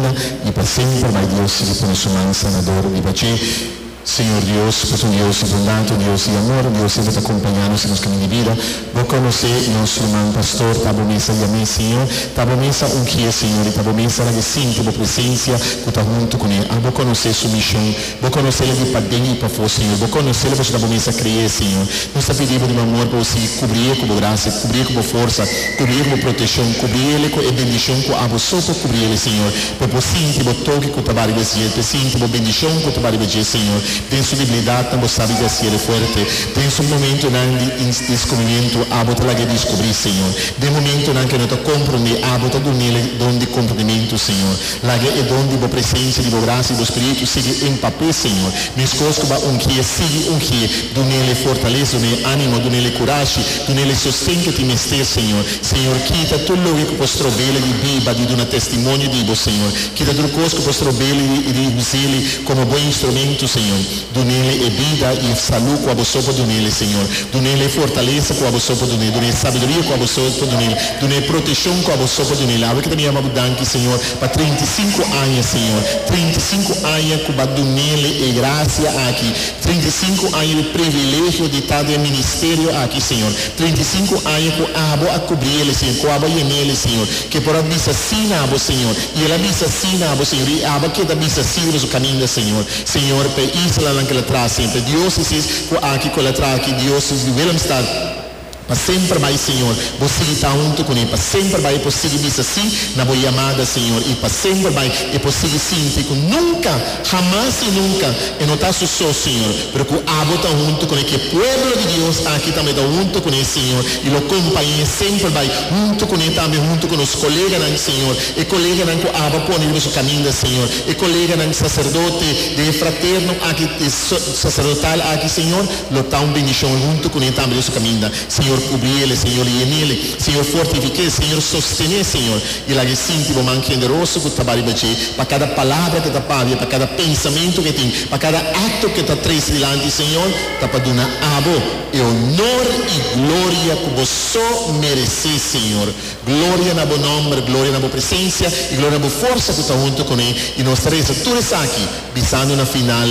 Anda i pa semper bai Dios sigui pone su man sanador riba dje. Señor Dios, bo ta un Dios di bondad, un Dios di amor, Dios di bo ta acompaña nos den nos camin di bida. Bo conoce nos lo man Pastor, ta bo mes a yam'é Señor, ta bo mes a ungi'é Señor, i ta bo mes a laga sinti bo presencia cu ta hunto cun'é. Abo conoce su mision. Bo conoce'le di pa den i pafo, Señor. Bo conoce'le pasobra bo mes a cre'e, Señor. Nos ta pidi'e Bo di manmor pa Bo sigui cubri'e cu Bo gracia, cubri'e cu Bo forza, cubri'e cu Bo proteccion, cubri'ele cu e bendicion cu abo so por cubri'ele, Señor. Bo por sinti Bo toki cu ta bariba esdje, por sinti Bo bendicion cu ta bariba dje, Señor. Den su debilidadnan Bo sabi di haciele fuerte. Den su momentonan di indiscubrimiento abo ta lag'e discubri, Señor. Den momentonan cu e no ta comprende, abo ta dun'ele don di comprendimento, Señor. Laga e don di bo presensia, di bo gracia, di bo spiritu sigui empape Señor. Meskos cu bo ungié, sigui ungié, dunele fortaleza, dunele animo, dunele curashi, dunele sosten cu tin mester Señor. Señor kita tur loke cu por strobele di biba, di duna testimonio di bo Señor. Kita tur cos cu por strobele di y di usele como bo instrumento Señor. Dunele e bida i e salu ku aboso por dunele, Señor. Dunele e fortalesa ku aboso por dunele. Duna e sabiduria ku aboso por dunele. Duna e proteshon ku aboso por dunele. Awe ke ta mi yama Bo danki, Señor, pa treinta i sinku aña, Señor. Treinta i sinku aña ku Bo a dunele e grasia aki. Treinta i sinku aña di privilegio di ta den e ministerio aki, Señor. Treinta i sinku aña ku abo a kubri ele, Señor, ku abo a yena ele, Señor. Ke por a bisa si na bo, Señor. I el a bisa si na bo, Señor, i abo a keda bisa si riba su kaminda, Señor. Señor p'e islanan ke la traha semper diosesis ku aki ku el a traha aki diosesis di Willemstad pa semper bai Señor bo sigui ta huntu kuné pa semper bai e por sigui bisa sí na bo yamada Señor i pa semper bai e por sigui sinti ku nunka hamas i nunka e no ta su so Señor pero ku abo ta huntu kuné ke pueblo di Dios aki tambe ta huntu kuné Señor i lo kompañe semper bai huntu kuné tambe huntu ku nos koleganan Señor e koleganan ku abo a pone riba su kaminda Señor. E koleganan saserdote den e fraterno aki, e saserdotal aki, Señor, lo ta un bendicion huntu cu ne tambe den su caminda. Señor, cubri el'e, Señor, yenel'e, Señor, fortificae, Señor, sostené, Señor, y lag'e sinti Bo man generoso cu ta ba riba dje, pa cada palabra que ta pabia, pa cada pensamento que tin, pa cada acto que ta traise dilanti, Señor, ta pa duna Abo e honor y gloria cu Bo so merecé, Señor. Gloria na bo nòmber, gloria na bo presensia i gloria na bo forsa ku ta huntu ku mi. I nos ta resa tur esaki bisando na final,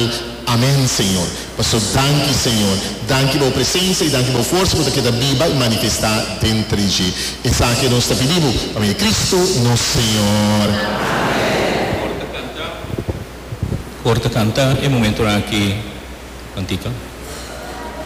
Amèn, Señor. Paso danki, Señor. Danki pa bo presensia i danki pa bo forsa ku ta keda biba i manifestá den tres dje. Esaki nos ta pidi bo pa medio di Cristo nos Señor. Amèn. Kor ta kanta. Kor ta kanta e momentunan aki. Tantito.